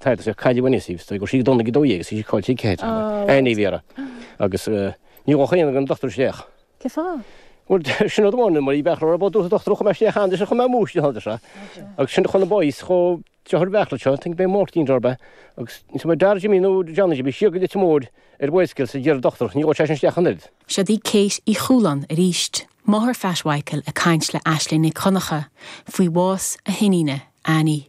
Tharla sé cailleadh an Isis, agus sí ag dul ag an 12 Isis, cáil sí Kate Anna, Annie Vera, agus ní dhócha aon gur an Dochtúir Sléach. Cé fáth? Bhuel, sin rud amháin, mar ní bheadh rud ar bith dúrtha dochtúir chomh maith Sléacht Anna, sin chomh maith múis de thaidir seo. Agus sin chun an boys chomh deartha ar bith leat seo, thinking about Máirtín dar ba, agus níl mé dar Jimí nó Johnny Jimí, síoga duit an mór ar Mhaedhscil sa deireadh dochtúir, ní dhóigh sé sin Sléach an oiread. Seo di Kate Uí Chualáin arís, máthair Phat Mhicil ag caint le Aisling Nic Dhonncha faoi bhás a hiníne, Annie.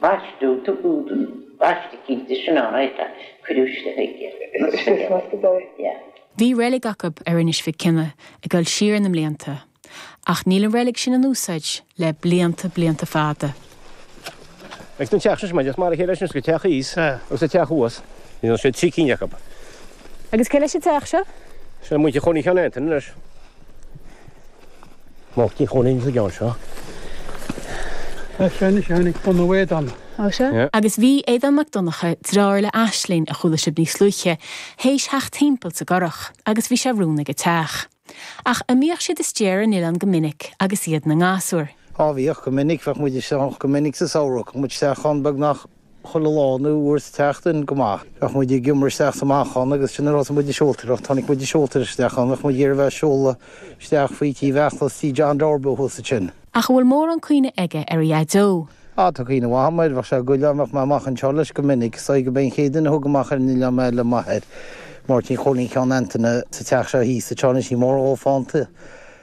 Baisteadh do údan baistigí de snáithe a cuireadh isteach aige. Bhí reilig acu ar Inis Mhic Cionnaith ag dul siar na mblianta, ach níl an reilig sin in úsáid le blianta blianta fada. Ag an teach seo mar a chéile leis an teach thíos agus an teach thuas. Níl ann, siad trí cinn acu. Agus cé leis an teach seo? Sin an muintir a chónaigh ann anois. Moltaí a chónaíonn sa gceann seo. Tá sé anois ann ag bunú éadan. Tá sé. Agus bhí Aodán Mac Donncha, dráir le Aisling, a chuala sibh níos luaithe, tar éis a theacht thimpeall sa gcurach, agus bhí sé romhainn ag an teach. Ach a mbíodh siad istigh ar an oileán go minic agus iad 'na ngasúir. Á bhíodh, go minic, bheadh muid istigh ann go minic sa samhradh, bheadh muid istigh ann beagnach. chuile darna uair sa tseachtain, go maith. Bheadh muid ag imirt isteach sa Manchán agus sin an rud a bhí muid ag siúltadh. Ach tháinig muid ag siúltadh isteach ann, bheadh muid ag iarraidh a bheith ag siúladh isteach faoi tí Bheachlos Tí John Deáirbe thuas ansin. Ach an bhfuil mórán cuimhne aige ar a Dhaideo? Á, tá cuimhne mhaith agam air, bheadh sé ag goil ann, bheadh mé amach anseo leis go minic, so ag gurbh é an chéad duine a thug amach ar an oileán mé le m'athair, Máirtín Chóilín Sheáin Antaine, sa teach seo thíos, a tseán, is í mór dhó fánta.